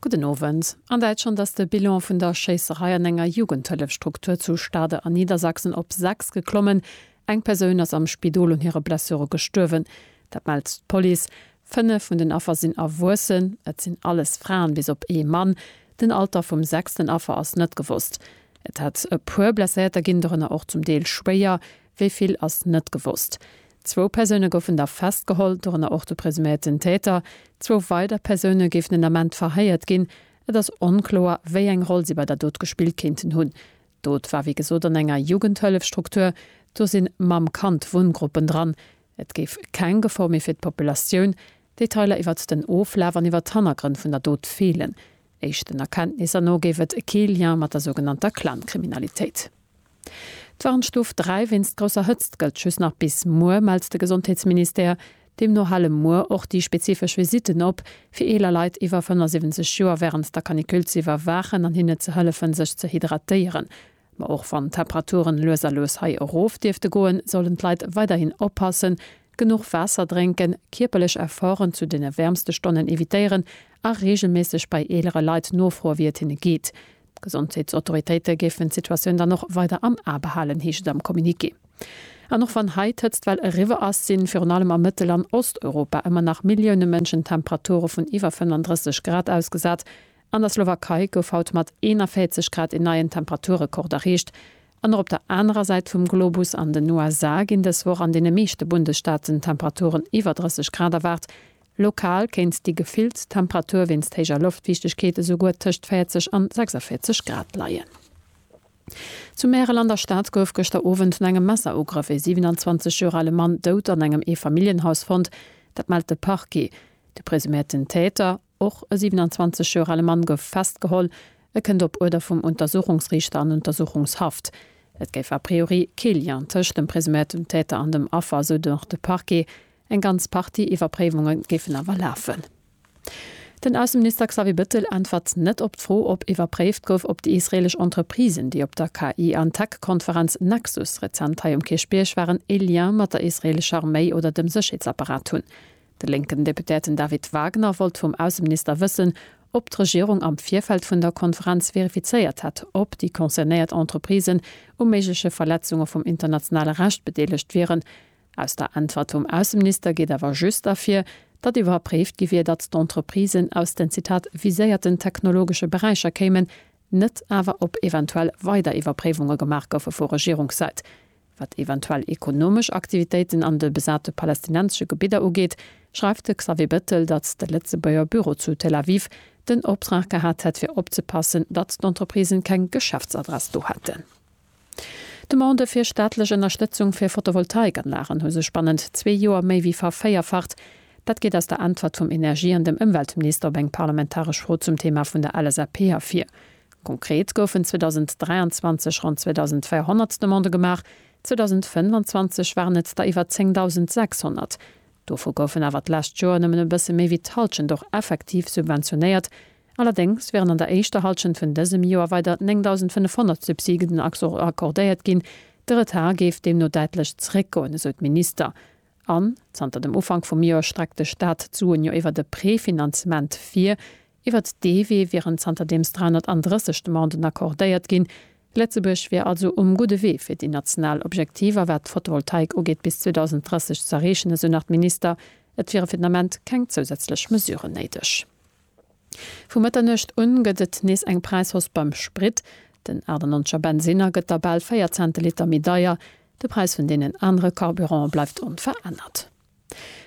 Gudden Owend. An Däitschland ass de Bilan vun der Schéisserei an enger Jugendhëllefstruktur zu Stade an Niedersachsen op 6 geklommen. Eng Persoun ass am Spidol un hire Blessure gestuerwen. Dat mellt d'Police. Fënnef vun den Affer sinn Erwuessen. Et sinn alles Fraen, bis op ee Mann. Den Alter vum sechsten Affer ass net gewosst. Et hätt e puer Blesséierter ginn, dorënner och zum Deel schwéier. Wéi vill ass net gewosst. Zwou Persoune goufen da festgeholl, dorënner och de presuméierten Täter. Zwou weider Persoune géifen den Ament verhéiert ginn. Et ass onkloer, wéi eng Roll si bei der Dot gespillt kéinten hunn. D'Dot war wéi gesot an enger Jugendhëllefstruktur. Do sinn Mamm-Kand-Wunngruppen dran. Et géif keng Gefor méi fir d'Populatioun. Detailer iwwert den Oflaf an iwwert d'Hannergrënn vun der Dot feelen. Éischten Erkenntnisser no géif et kee Lien mat der sougenannter Clan-Kriminalitéit. D'Warnstuf 3 wéinst grousser Hëtzt gëllt just nach bis muer, mellt de Gesondheetsministère. Deemno hale muer och déi spezifesch Visitten op, fir eeler Leit iwwer 75 Joer wärend der Canicule ze iwwerwaachen an hinne ze hëllefen, sech ze hydratéieren. Ma och wann d'Temperaturen lues a lues hei erof dierfte goen, sollen d'Leit weiderhin oppassen, genuch Waasser drénken, kierperlech Efforten zu deene wäermste Stonnen evitéieren a reegelméisseg bei eelere Leit nofroe wéi et hinne geet. D'Gesondheetsautoritéite géifen d'Situatioun dann och weider am A behalen, heescht et am Communiqué. An och wann hei d'Hëtztwell eriwwer ass, sinn virun allem a Mëttel an Osteuropa ëmmer nach Millioune Mënschen Temperature vun iwwer 35 Grad ausgesat. An der Slowakei gouf haut mat 41 Grad een neien Temperaturrekord erreecht. An och op der anerer Säit vum Globus, an den USA, ginn dës Woch an deene meeschte Bundesstaaten Temperaturen iwwer 30 Grad erwaart. Lokal kéint déi gefillt Temperatur wéinst héijer Loftfiichtegkeet esou guer tëscht 40 an 46 Grad leien. Zu Märel an der Stad gouf gëschter Owend no engem Messerugrëff ee 27 Joer ale Mann dout an engem Eefamilljenhaus fonnt. Dat mellt de Parquet. De presuméierten Täter, och e 27 Joer ale Mann, gouf festgeholl. E kënnt op Uerder vum Untersuchungsriichter an Untersuchungshaft. Et géif a priori kee Lien tëscht dem presuméiertem Täter an dem Affer, sou nach de Parquet. Eng ganz Partie Iwwerpréiwunge géifen awer lafen. Den Ausseminister Xavier Bettel äntwert net op d'Fro, ob iwwerpréift gouf, ob déi israeelesch Entreprisen, déi op der KI an Tech-Konferenz Nexus rezent hei um Kierchbierg waren, ee Lien mat der israeelescher Arméi oder dem Sécherheetsapparat hunn. De lénken Deputéierten David Wagner wollt vum Ausseminister wëssen, ob d'Regierung am Virfeld vun der Konferenz verifizéiert hätt, ob déi concernéiert Entreprisen u méigleche Verletzunge vum internationale Recht bedeelegt wieren, Aus der Äntwert vum Ausseminister geet awer just ervir, datt iwwerpréift gi wier, datt d'Entreprisen aus den, Zitat, viséierten technologesche Beräicher kéimen, net awer ob eventuell weider Iwwerpréiwunge gemaach goufe vu Regierungssäit. Wat eventuell ekonomesch Aktivitéiten an de besate palästinensesche Gebidder ugeet, schreift de Xavier Bettel, datt de Lëtzebuerger Büro zu Tel Aviv den Optrag gehat hätt fir opzepassen, datt d'Entreprisen keng Geschäftsadress do hätten. D'Demandë fir staatlech Ënnerstëtzung fir Photovoltaikanlagen hu sech bannent zwee Joer méi wéi vervéierfacht. Dat geet aus der Äntwert vum Energie an dem Ëmweltminister op eng parlamentaresch Fro zum Thema vun der LSAP ervir. Konkret goufen 2023 ronn 2.400 Demandë gemaach, 2025 waren et der iwwer 10.600. Dovu goufen awer d'lescht Joer nëmmen e bësse méi wéi d'Hallschent och effektiv subventionéiert, Allerdéngs wären an der éischter Hallschent vun dësem Joer weider 9.500 Subsiden accordéiert ginn. De Retard géif deemno däitlech zeréckgoen, esou d'Minister. An zanter dem Ufank vum Joer streckt de Staat d'Suen jo iwwer e Prefinanzement vir. Iwwert dee Wee wieren zanterdeems 330 Demanden accordéiert ginn. Lëtzebuerg wier also um gudde Wee fir déi national Objektiver, wat d'Fotovoltaik ugeet, bis 2030 z'erreechen, esou nach d'Minister. Et wiere fir den Ament keng zousätzlech Mesuren néideg. Vu Mëtternuecht un gëtt et nees eng Präishausse beim Sprit. Den 98 er Bensinner gëtt da bal 4 Cente Liter méi deier. De Präis vun deenen anere Carburanten bleift onverännert.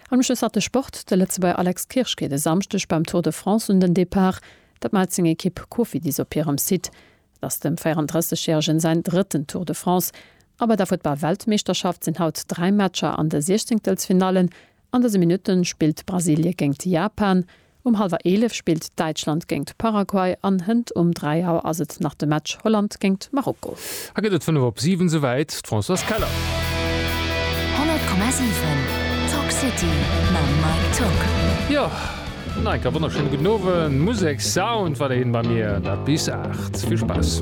An um Schluss hat de Sport. De Lëtzebuerger Alex Kirsch geet e Samschdeg beim Tour de France un den Depart. Dat mellt seng Ekipp Cofidis op hirem Site. Et ass dem 34 järegen säin drëtten Tour de France. A bei der Futtball-Weltmeeschterschaft sinn haut 3 Matcher an de Siechzéngtelsfinallen. An dëse Minutte spillt Brasilie géingt Japan, um hallwer 11 spillt Däitschland géingt Paraguay an hënt um 3 Auer ass et nach de Match Holland géingt Marokko. Hei gëtt et 5 op 7 souwäit, d'Françoise Keller. 100,7 Talk City mam Mike Tock. Jo, no enker wonnerschéine gudden Owend. Musek, Sound war der hien bei mir, dat bis 8. Vill Spaass.